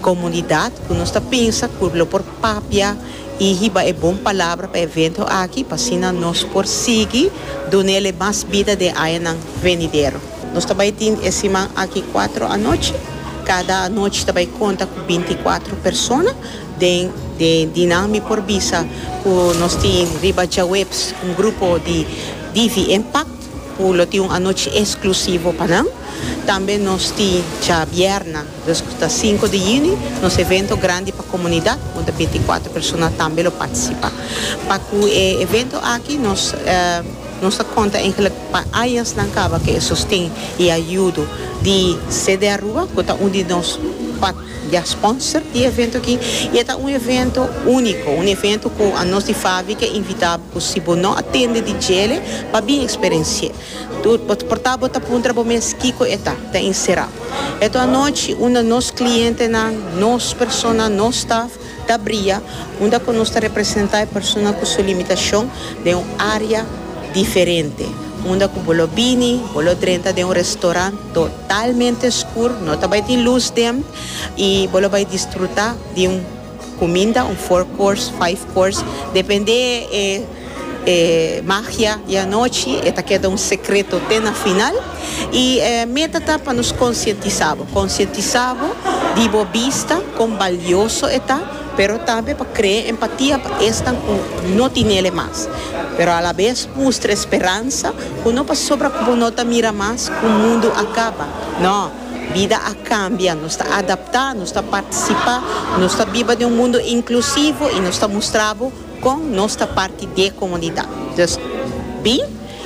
Comunidad cu nos ta pensa cu lo por papia y hiba e bon palabra pa e evento aki pa asina nos por sigui dunele mas bida den añanan venidero. Nos ta bay tin e siman aki cuatro anochi. Cada anochi ta bay conta cu binti y cuatro persona. Den de di nan mi por bisa cu nos tin riba djaweps un grupo di Divi Impact. Cu lo tin un anochi exclusivo pa nan. Tambe nos tin djabièrna, dus cu ta sinku di juni, nos evento grandi pa comunidad, unda binticuatro persona tambe lo participa. Pa cu e evento aki nos nos ta conta eigenlijk pa añasnan caba cu e sosten y ayudo di CDARUBA, cu ta un di nos. Dia sponsor di e evento aki y e ta un evento unico, un evento cu anos di fabrica a invitabo cu si bo no a tende di djele pa bin experenci'e. Bo ta porta bo ta puntra bo mes kico e ta, ta encera. Eto anochi un di nos clientenan, nos persona, nos staff, Ta bria unda cu nos ta representa e persona cu su limitacion den un area diferente, unda cu bo lo bini, bo lo drenta den un restaurant totalmente scur, no ta bay tin luz den, y bo lo bay disfruta di un cuminda, un four course, five course, depende e. E magia di anochi e ta keda un sekreto te na final. I e meta ta pa nos konsientisá bo, konsientisá bo di bo bista, kon balioso e ta, pero tambe pa krea empatia pa esnan ku no tin nele mas. Pero alabes mustra e speransa ku no pasobra ku bo no ta mira mas ku mundu a kaba. No, bida a kambia, nos ta adaptá, nos ta partisipá, nos ta biba den un mundu inklusivo i nos ta mustra bo Con nos ta parti d'e comunidad. Dus bin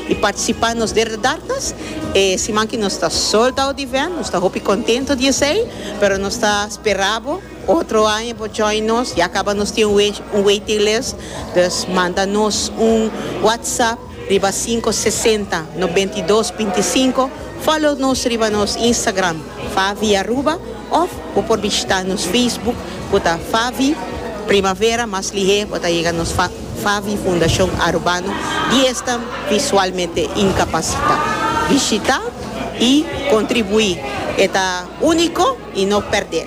y participa nos derde dardas e siman ki nos ta sold out event. Nos ta hopi contento di esey pero nos ta spera bo otro aña bo join nos. Ya caba nos tin un waiting list. Dus manda nos un WhatsApp. Riba cinco sesenta nobentidos binticinco follow nos riba nos Instagram Favi Aruba of bo por bishita nos Facebook cu ta Favi Primavera mas lihé bo ta yega nos Favi Fundacion Arubano di esnan visualmente incapacita bishita y contribui e ta unico y no perdé.